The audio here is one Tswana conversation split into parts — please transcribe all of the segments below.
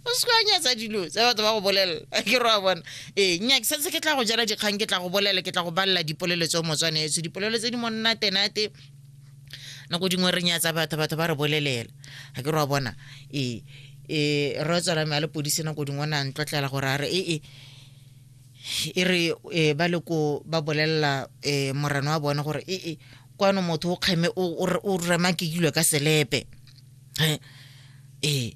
o se kwanyatsa dilo tse batho ba go bolelela ke roa bona ee nnyake setse ke tla go jela dikgang ke tla go bolela ke tla go balela dipolelo tse o motswanetso dipolelo tse di monnatenate nako dingwe re nyatsa batho batho ba re bolelela ga ke roa bona ee um re tswela me a le podise nako dingwe o ne a ntlotlela gore a re ee e re e, ba le ko ba bolelela um morena wa bone gore ee kwano motho o kgeme o rema ke dilo ka selepe ee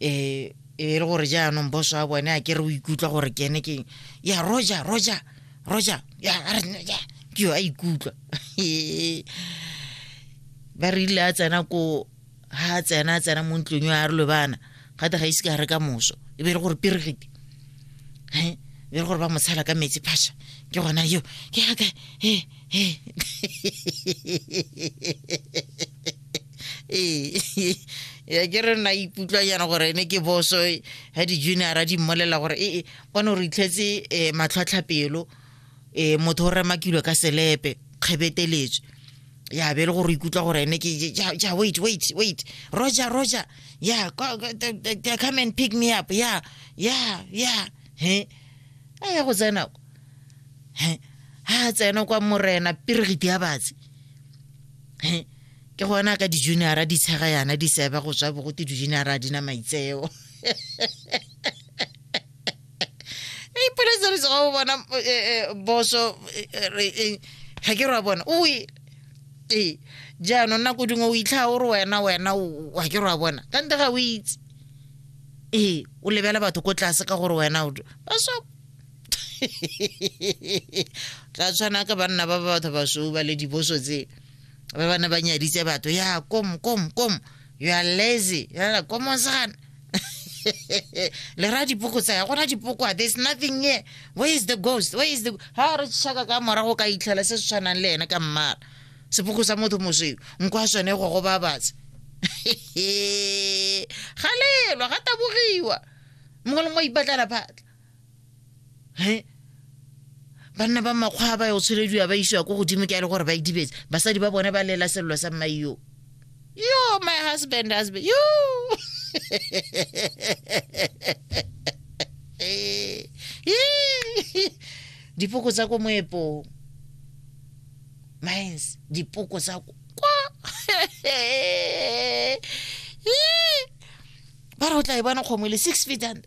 ee e le gore jaanong boso a bone a kere o ikutlwa gore ke ene keng ya roja roja roja ya ke yo a ikutlwa ba re ile a tsena ko ha a tsena a tsena mo ntlong yo a re lobana gate ga ise ka re ka moso e be e le gore peregete e be e le gore ba mo tshela ka metsi phasha ke gona yo ke yaka he he ee ya ke re nna ikutlwa yana gore ne ke boso ga di-juniora di mmolela gore ee bone gore itlhetse um eh, matlhwatlhapelo um eh, motho o remakilwe ka selepe kgebeteletswe ya be e le gore ikutlwa gore ene ke ja wait wait wait roger roger ya come and pick me up ya ya ya he a ya go tsena he ha tsena kwa morena piregiti ya batsi ke gona ka di-juniora di tshega yana di seba go tswa bogote di-juniora di na maitseo ipoletsere tsoga o bona eh, eh, boso eh, ga ke rwa bona o e ee jaanong nako dingwe o itlha o re wena wena wa ke rwa bona ka nte ga o itse ee o lebela batho ko tlase ka gore wena o baso tla tshwana ka banna ba ba batho basweu ba le diboso tse ba bana ba nyaditse batho ya kom kom kom you are lazy yala komosana le ra dipoko tsa ya gona dipoko a there's nothing here where is the ghost where is the ha re tšhaka ka morago ka itlhela se se tshwanang le ene ka mmala sepoko sa motho mosweu nko a sone go go babatsa ga lelwa ga tabogiwa mongwe le mongwe ipatlela phatla he banna ba makgwa ba yo tsholediwa ba isiwa ko godimo ke a le gore ba idibetse basadi ba bone ba lela selelo sa mmae yo yo my husband husband yo dipoko tsa ko moepong mines dipoko tsa ko kwa ba re o tla e bona kgomwe le six feet under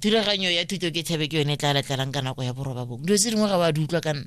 thulaganyo ya thuto ke thabe ke yone e tla latlalang ka nako ya boroba bong dilo tse dingwe ga wa di utlwa ka nna